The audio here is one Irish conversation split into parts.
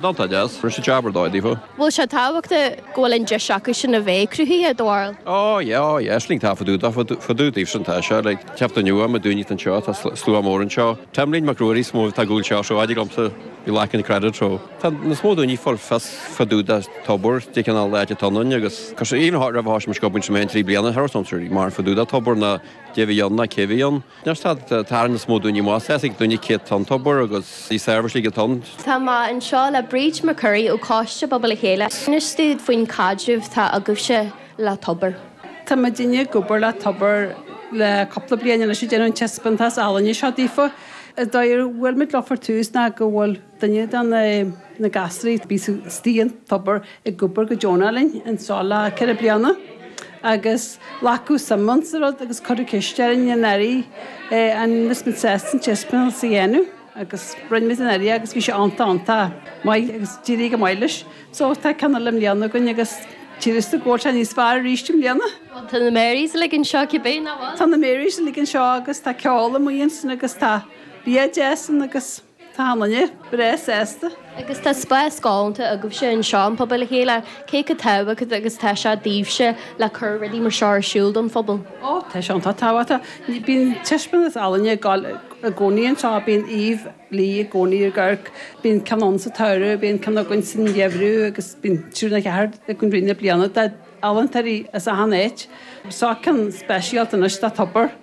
Ná tá deas, rinne siad jab ar dóigh daofa. Bhfuil sé tábhachtach go bhfuil an deis acu sin a bheith cruthaitheach, a Dhónaill? Ó, yeah, ó, yeah, aisling taifeadadh dá fadú daoibh sin, tá sé, like, teacht inniu, an méid daoiní atá anseo, tá slua mór anseo. Taimlín Mac Ruairí is mó atá ar gcúl seo, so adeir liomsa, you're lacking credit, so. Tá níos mó daoiní fáil fios fá dtaobh de Tobar, cén cineál áit atá ann agus tá sé, even hot roimh a thosaigh mise ag obair in Tremaine trí bliana, chuala something mar fá dtaobh de Tobar ná caidé bhí ann ná cé bhí ann. Níor stad tarraingt is mó dúinn í más. Sheasaigh duine caidé atá ann Tobar agus na seirbhísí uilig atá ann. Tá mé anseo le Bríd McCurry ó Choiste Pobail le Chéile. Inis dúinn faoin caidreamh atá agaibhse le Tobar. Tá muid i ndiaidh obair le Tobar le cúpla bliain anois ag déanamh an taispeantás ealaíne seo daofa. Is dóigh go bhfuil muid le far tús ná go bhfuil. Duine de na gasraí a bhí istigh in Tobar ag obair go deonach linn anso le ceithre bliana agus glacadh suim sa rud agus cuireadh ceist orainn anuraidh an bhfuil muid sásta an Chessmill a dhéanamh agus rinne muid anuraidh agus bhí sé iontach iontach maith agus d'éirigh go maith leis. So tá ceann eile i mbliana againn agus títhear domh go bhfuil sé níos fearr arís i mbliana. Tá na Marys uilig anseo cibé, nach bhfuil? Tá na Marys uilig anseo agus tá ceol amuigh ansin agus tá bia deas ann agus. Táimidne breá sásta. Agus tá spás galánta agaibhse anseo in Pobal le Chéile, cé chomh tábhachtach agus atá sé daoibhse le cur rudaí mar seo ar siúl don phobal? Ó, tá sé iontach tábhachtach. Bíonn taispeántas ealaíne ag dul i gcónaí anseo, bíonn Éabhlóid i gcónaí ar Gort, bíonn ceann againn sa tsamhradh, bíonn ceann againn sa gheimhreadh agus bíonn trí nó ceathair i rith na bliana d'ealaíontóirí as achan áit. Seo ceann speisialta anois do Tobar.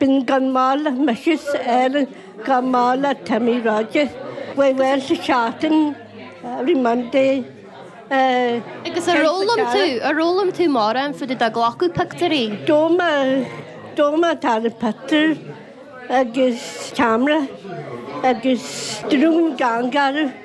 Bhí an-mhaith le Mrs Allen, an-mhaith le Timmy Rogers. We went to shopping every Monday. Agus ar fhoghlaim tú, ar fhoghlaim tú mórán fá dtaobh de glacadh pictiúirí? Do má, do má tharla pictiúr agus ceamara agus drún cheana orthu.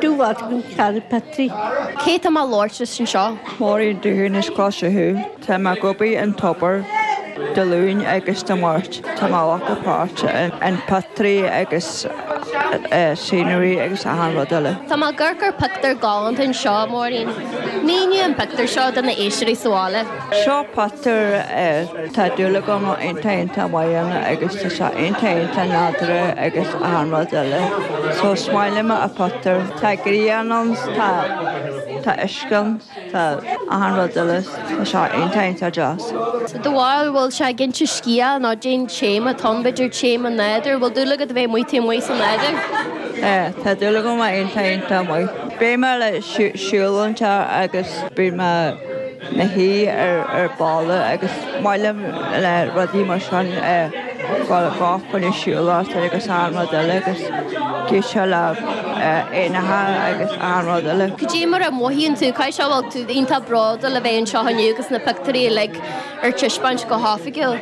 Dubhart Mhic Charra, Petrie. Cé atá mé ag labhairt leis anseo? Máirín Doohan as Cloich Cheann Fhaola. Tá mé ag obair in Tobar Dé Luain agus Dé Máirt tá mé ag glacadh páirt in pottery agus scenery agus achan rud eile. Tá mé ag amharc ar pictiúr galánta anseo, Máirín. Mínigh an pictiúr seo do na héisteoirí sa bhaile. Seo pictiúr air. Tá dúil agam ann iontach iontach maith ann agus tá sé iontach iontach nádúrtha agus achan rud eile. So is maith liom an pictiúr. Tá grian ann 's tá tá uisce ann, tá achan rud eile 's tá sé iontach iontach deas. So do bharúil bhfuil sé ag inse scéal nó cén téama atá ann b'fhéidir téama nádúr, bhfuil dúil agat a bheith amuigh taobh amuigh sa nádúr? Eh tá dúil agam ann iontach iontach maith. Beidh mé ag siúl an trá agus beidh mé. léi ar balla agus maith liom le rudaí mar sin dul fá choinne siúlóid agus achan rud eile agus ag éisteacht le éanacha agus achan rud eile. Cad é mar a mhothaíonn tú, caithfidh sé go bhfuil tú iontach bródúil le bheith anseo inniu agus na pictiúirí uilig ar taispeáint go hoifigiúil.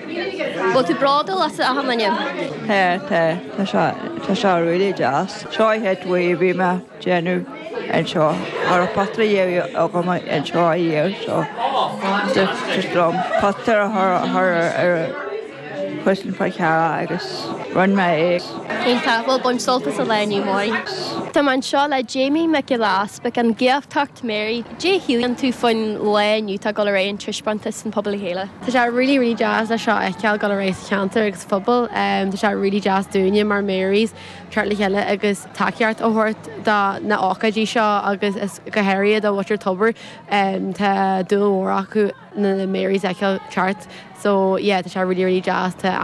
Bhfuil tú bródúil asat féin inniu? Tá, tá, tá sé, tá sé really deas. Seo pictiúir a bhí mé. déanamh anseo. Tá na potaí déanta agam anseo a dhéag seo. D'fhreastail liom potaí a chur ar an chosán faoi cheara agus rinne mé é. Iontach! Bhuel, bain sult as an lá inniu, Máirín. Tá mé anseo le Jamie Nic Giolla Easpaig, an Gaeltacht Mary, cad é a shíleann tú faoin lá inniu tá dul ar aghaidh, an taispeántas san Pobal le Chéile. Tá sé really really deas le seo a fheiceáil dul ar aghaidh sa cheantar agus sa phobal. Tá sé really deas dúinne mar Marys teacht le chéile agus. tacaíocht a thabhairt do na hócáidí seo agus is go háirithe do mhuintir Tobair. Tá dúil mhór acu na Marys a fheiceáil teacht so yeah tá sé really really deas.